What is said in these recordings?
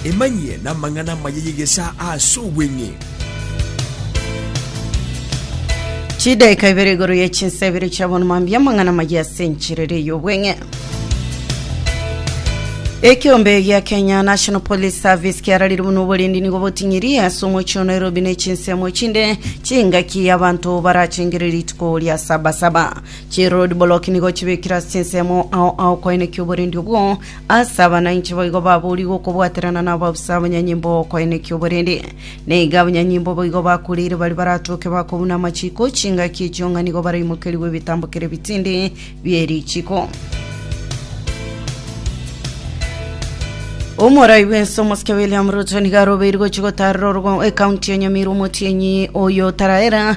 Emanyie namang'ana amaya y'egesaa ase obweng'e. Chidaika ibere igoro ye chinsa ibere chia bono mambia amang'ana amaya ase enchera ere y'obweng'e. Ekiombe gia Kenya National Police Service kiararire buna oborindi nigo boting'irie ase omochie o Nairobi na echinsemo chinde chingaki y'abanto barachengire rituko ria sabasaba. Chiroad block nigo chibekire ase ensemo ao aokoenekia oborendi obwo, ase aba nainche boigo baboorigwe okobwaterana nabo abusa abanyanyimbo b'okoenekia oborende. Na iga abanyanyimbo boigo bakureire baria baratoke bakobuna amachiko, chingaki echio ng'a nigo baraimokerigwe ebitambo kera ebitindi bie richiko. Omorai bw'ense omosike William Ruto nigo arobeirwe gochia gotaarera orogo- ekaunti ya Nyamira omotienyi oyo otaraera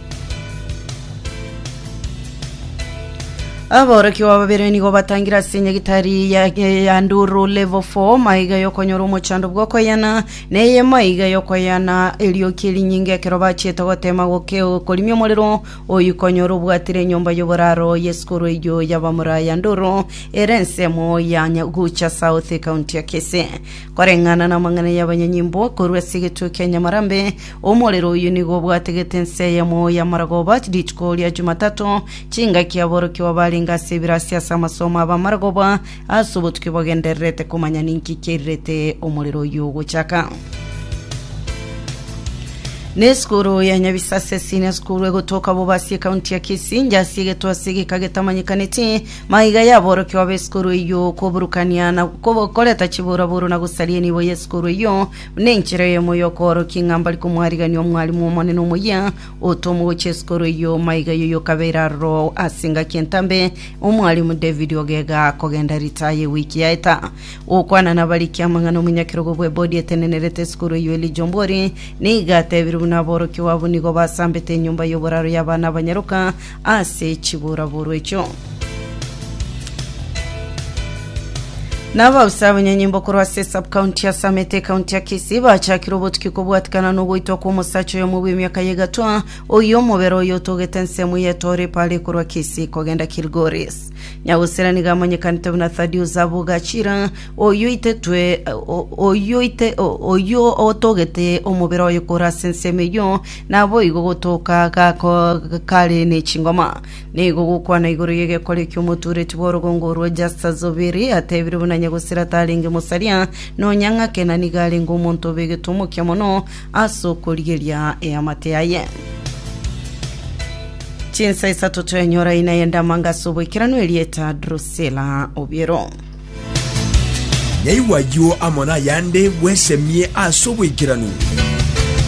Aborokigwa babere nigo batangire ase enyagitari ya, ya, ya nduru level 4 maiga yokonyora omochando bw'okoyana na eye maiga yokoyana erioki erinyinge ekero bachiete gotema goke korimia omorero oyio konyora obwatire enyomba y'oboraro y'esukuru eyio y'abamura ya nduru ere ensemo ya Nya- gucha south ekaunti ya kise koreng'ana na amang'ana y'abanyanyimbo korwa ase egetuo kia nyamarambe Omorero oyio nigo obwategete ense eyemo y'amaragoba rituko ria Chumatato, chingaki aborokigwa barenge ase ebirasi ase amasomo ’abamaragoba ase obotuki bagendererete komanya ninki kiairerete omorero oyio ogochaka. Nesukuru ya Nyabisase Senior School egotoka Bobasi ekaunti ya Kisii inche ase egetwasa egeka getamanyekaneti maiga yaborokigwa b'esukuru eyio koburukania na koreta chiburaburu na gosaria enibo y'esukuru eyio Nenchera eyemo y'okoorokia ng'a mbari komwarigania Omwalimu Omonene omoyia, otomo gochia isiko rwe iy'omo aiga eyo yokabeire aroro ase engaki entambe, Omwalimu David Ogega kogenda ritaya ewiki yaeta. Gokwana nabarikia amang'ana omonyakerogo bw'ebodi etenenerete isiko rwe iy'o Elijah Ombori nigo atebirie buna aborokigwa abwo nigo basambete enyomba y'oboraro y'abana abanyaroka ase chiburaburu echio. Nabausi abanyanyimbo korwa ase subcounty ya Samete ekaunti ya Kisii bachakire obotuki kobwatikana nogoitwa kwa omosacha oyomo bw'emiaka ya egatwa oyo omobere oyo otogete ensemo ya etore pale korwa Kisii kogenda Kilgoris. Nyagosera nigo amanyekanete buna Thaddeus Abogachira oyo itetwe o- oyo ite o- oyo otogete omobere oyo korwa ase ensemo eyo Naboigo gotoka gako kare ne chingoma, nigo gokwana igoro y'egekori ki'omotuureti bw'orogongo rwa jasta zobiri, atebire buna nyagosira tarenge mosaria, nonya ng'ake na nigo arenge omonto obegete omokia mono ase okorigeria eamate yaye. Chinsa isato twenyora ina y'endamanga ase oboikeranu erieta Drusila Obiero. Naigwa ayio amo nayande bwesemie ase oboikeranu.